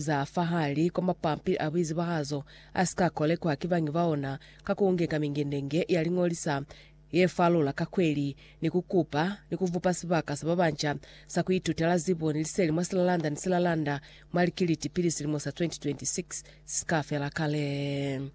za fahali kwa mapampili a buizibahazo a si ka kolekwa ki bangi ba ona ka ku ngeka mingendenge ya liñolisa ye falula ka kweli ni ku kupa ni ku vupa sibaka sa ba banca sa ku itutela zibo ni liseli mwa silalanda ni silalanda mwa likiliti pili silimo sa 2026 si si ka fela kale.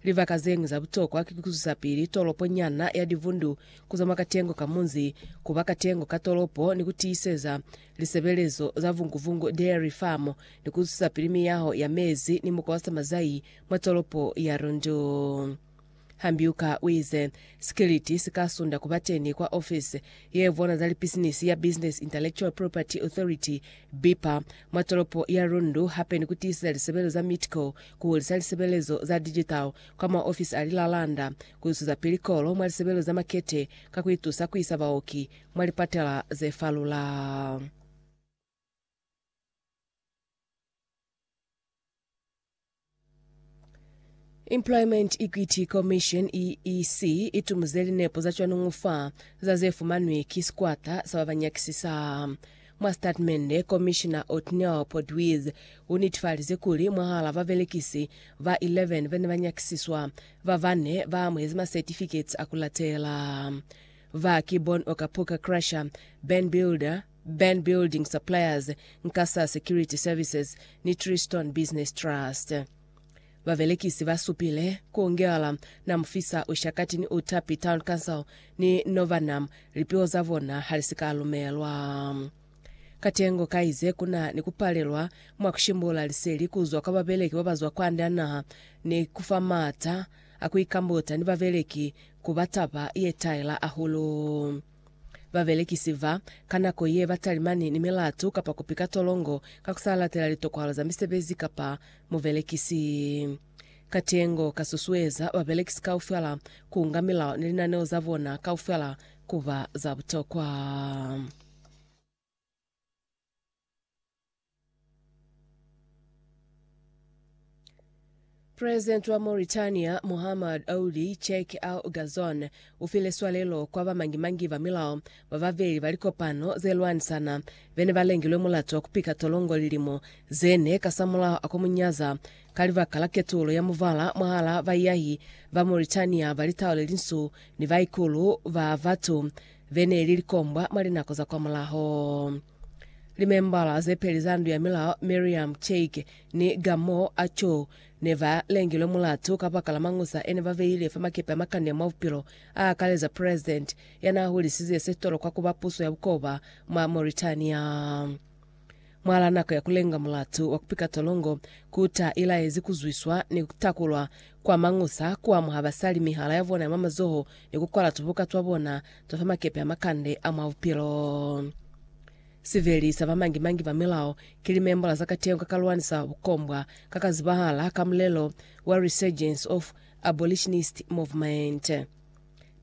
Libaka zeñwi za butokwa ki kuzwisapili tolopo nyana ya Divundu kuzama katengo ka munzi kuba katengo ka tolopo ni kutiiseza lisebelezo za Vungu-Vungu Dairy Farm ni kuzwisapili miyaho ya mezi ni mukwa wa samazai mwa tolopo ya Rundu. Hambiuka uize, Sikiliti sikasunda kubateni kwa ofisi yevona za lipisinisi ya Business Intellectual Property Authority, BIPA, mwa tolopo ya Rundu hape ni kutiiseza lisebelezo za Meatco ku hulisa lisebelezo za digital kwa maofisi a lilalanda, ku zwezapili kolo mwa lisebelezo za makete ka ku itusa ku isa baoki mwa lipatela ze falula. Employment Equity Commission, EEC, i tumuze linepo za cwanuñu fa za ze fumanwi ki sikwata sa ba ba nyakisisa. Mwa sitatimende, Komishina Otniel Portwiz unetifalize kuli mwahala babelekisi ba 11 bane banyakisiswa, babane baamuhezi masertificates akulatela. Ba ki Bon Okapuka Crusher, Ben Builder, Ben Building Suppliers, Nkasa Security Services ni Tristone Business Trust. Babelekisi ba supile ku Ngeala, Namufisa, Ushakati ni Utapi Town Council ni Novanam lipiho za bona ha li si ka lumelwa. Katengo ka ize ku na ni ku palelwa mwa ku shimbula liseli ku zwa kwa babeleki ba ba zwa kwande a naha ni ku fa m'ata a ku ikambuta ni babeleki ku ba taba ye taela hahulu. Babelekisi ba ka nako ye ba talimani ni milatu kapa kupi ka tolongo ka ku sa latela litokwalo za misebezi kapa mubelekisi. Katengo ka susueza babelekisi kaufela ku nga milao ni linaneo za bona kaufela ku ba za butokwa. President wa Mauritania Muhammad Ould Cheikh Al Ghazouan ufile swalelo kwa bamangi-mangi ba milao bababeli ba likopano zelwanisana bene balengilwe mulato wa kupika tolongo lilimo zene kasamulaho akwa munyaza ka libaka la ketulo ya muvala mwahala baiyahi ba Mauritania ba litau lelinsu ni baikulu ba batu beneli likombwa mwa linako za kwamulaho. Limembala ze peli za ndu ya milao Miriam Cheike ni Gamoo Achou ne ba lengilwe mulatu kabakala mañusa ene ba beile fa makepe a makani a mwa bupilo, a akaleza president ya n'a hulisize se tolokwa ku ba puso ya bukoba mwa Mauritania. Mwal'a nako ya ku lenga mulatu wa ku pika tolongo, ku ta ilaezi ku zwiswa ni ku takulwa Kwa mañusa, ku amuha basali mihala ya bona ya mwa mazoho ni ku kwala tubuka twa bona twa fa makepe a makande a mwa bupilo. Siveli sa ba mangi-mangi ba milao ki limembola za kateho ka ka lwanisa bukombwa ka ka zibahala ka mulelo wa Resurgence of Abolitionist Movement.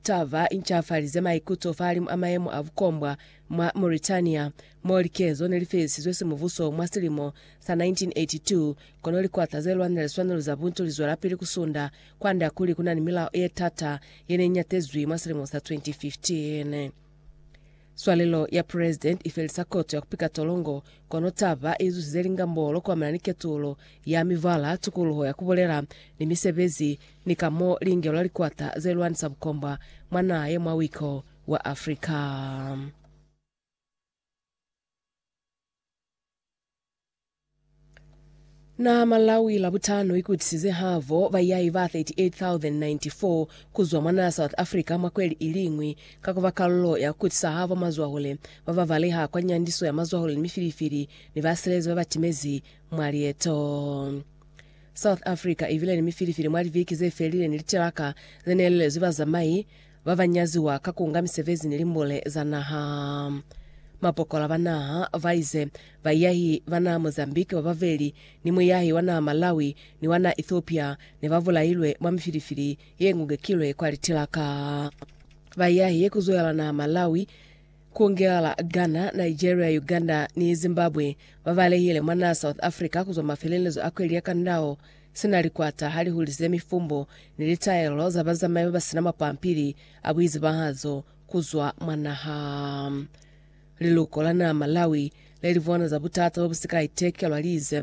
Taba incafalize maikuto fahalimu a mayemo a bukombwa mwa Mauritania, mo likezo nelifelisizwe simubuso mwa silimo sa 1982, kono likwata zelwanela liswanelo za buntu lizwelapili kusunda kwand'a kuli kunani milao yetata yeneiñatezwi mwa silimo sa 2015. Swalelo ya President ifelisa koto ya kupika tolongo, kono taba izusize lingambolo kuamana ni ketulo ya mibala, tukuluho ya kubulela, ni misebezi, ni ka mo lingelwa likwata zelwanisa bukombwa mwa naha ye mwa wiko wa Africa. Na Malawi Labutano ikutisize havo bayai ba 38,094 kuzwa mwa naa South Africa mwa kweli iliñwi ka kuba kalulo ya kukutisa havo mazwahule ba ba baleha kwa nyandiso ya mazwahule ni mifilifili ni basilezi ba ba timezi mwa lieto. South Africa ibile ni mifilifili mwa liviki ze felile ni litilaka ze nelelezwi bazamai ba ba nyaziwa ka ku nga misebezi ni limbule za naha. Mapokola ba naha ba ize, Baiyahi ba naha Mozambique ba babeli ni muiyahi wa naha Malawi ni wa naha Ethiopia ne ba bulailwe mwa mifilifili ye ngungekilwe kwa litilaka. Baiyahi ye ku zwela naha Malawi, ku ngela Ghana, Nigeria, Uganda ni Zimbabwe ba balehile mwa naha South Africa ku zwa mafelelezo a kweli ya kandao sina likwata ha li hulize mifumbo ni litaelo za bazamai ba ba sina mapampili a buizibahazo ku zwa mwa naha. Liluko la naa Malawi le li bona za butata bo bu si ka itekelwa li ize,